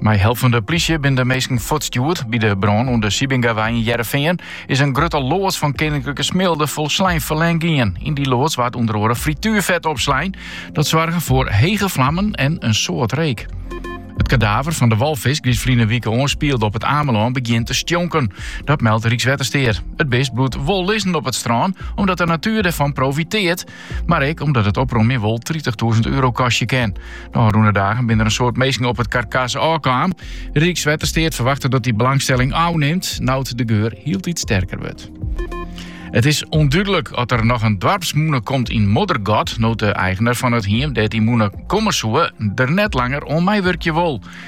Mei help fan de plysje binne de minsken fuortstjoerd. By de brân oan de De Plantijnwei yn Hearrenfean is in grutte loads fan Keninklike Smilde folslein ferlern gien. Yn dy loads waard ûnder oare frituerfet opslein. Dat soarge foar hege flammen en in soad reek. It kadaver fan de walfisk dy't ferline wike oanspielde op It Amelân begjint te stjonken. Dat meldt Rykswettersteat. It bist bliuwt wol lizzen op it strân, omdat de natuer derfan profitearret. Mar ek omdat it opromjen wol tritichtûzen euro kostje kin. De ôfrûne dagen binne der in soad minsken op it karkas ôfkaam. Rykswettersteat ferwachtet dat dy belangstelling ôfnimt, no't de geur hieltyd sterker wurdt. It is ûndúdlik oft der noch in doarpsmûne komt yn Moddergat, no't de eigener fan it hiem dêr't dy mûne komme soe, der net langer oan meiwurkje wol.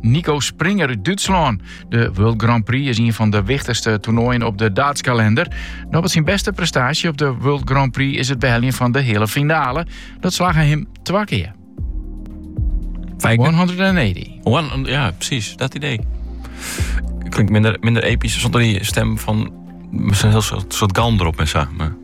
Nico Springer út Dútslân. De World Grand Prix is een fan de wichtigste toernooien op de daatskalender. Noch wat syn beste prestatie op de World Grand Prix is het beheljen van de hele finale. Dat slagge him twa keer. 180. One, ja, precies. Dat idee. Klinkt minder, minder episch zonder die stem van... Misschien een heel soort, soort galm erop en zo. Maar...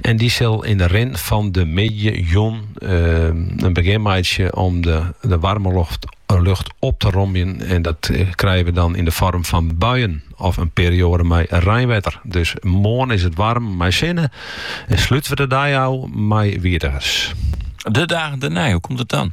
En dy sil yn de rin fan de middei jûn in begjin meitsje om de waarme lucht op te romjen. En dat krije we dan yn de foarm fan buien of in perioade mei reinwetter. Dus moarn is it waarm mei sinne en slute we de dei ôf mei wjirrigens. De dagen dêrnei, hoe komt it dan?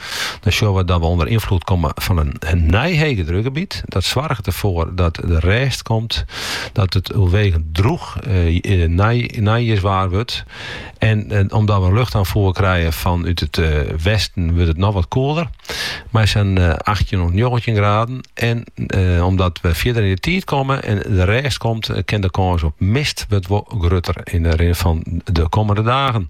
Dan sjoch we dat we ûnder ynfloed komme fan in nij hegedrukgebiet. Dat soarget derfoar dat der rêst komt, dat it oerwegend drûch eh, neijierswaar wurdt. En eh, omdat we in luchtoanfier krije fanút it eh, westen, wurdt it noch wat koeler. Mei sa'n eh, 18 of 19 graden. En eh, omdat we fierder yn de tiid komme en de rêst komt, eh, kin de kâns op mist wurdt wat grutter yn de rin fan de kommende dagen.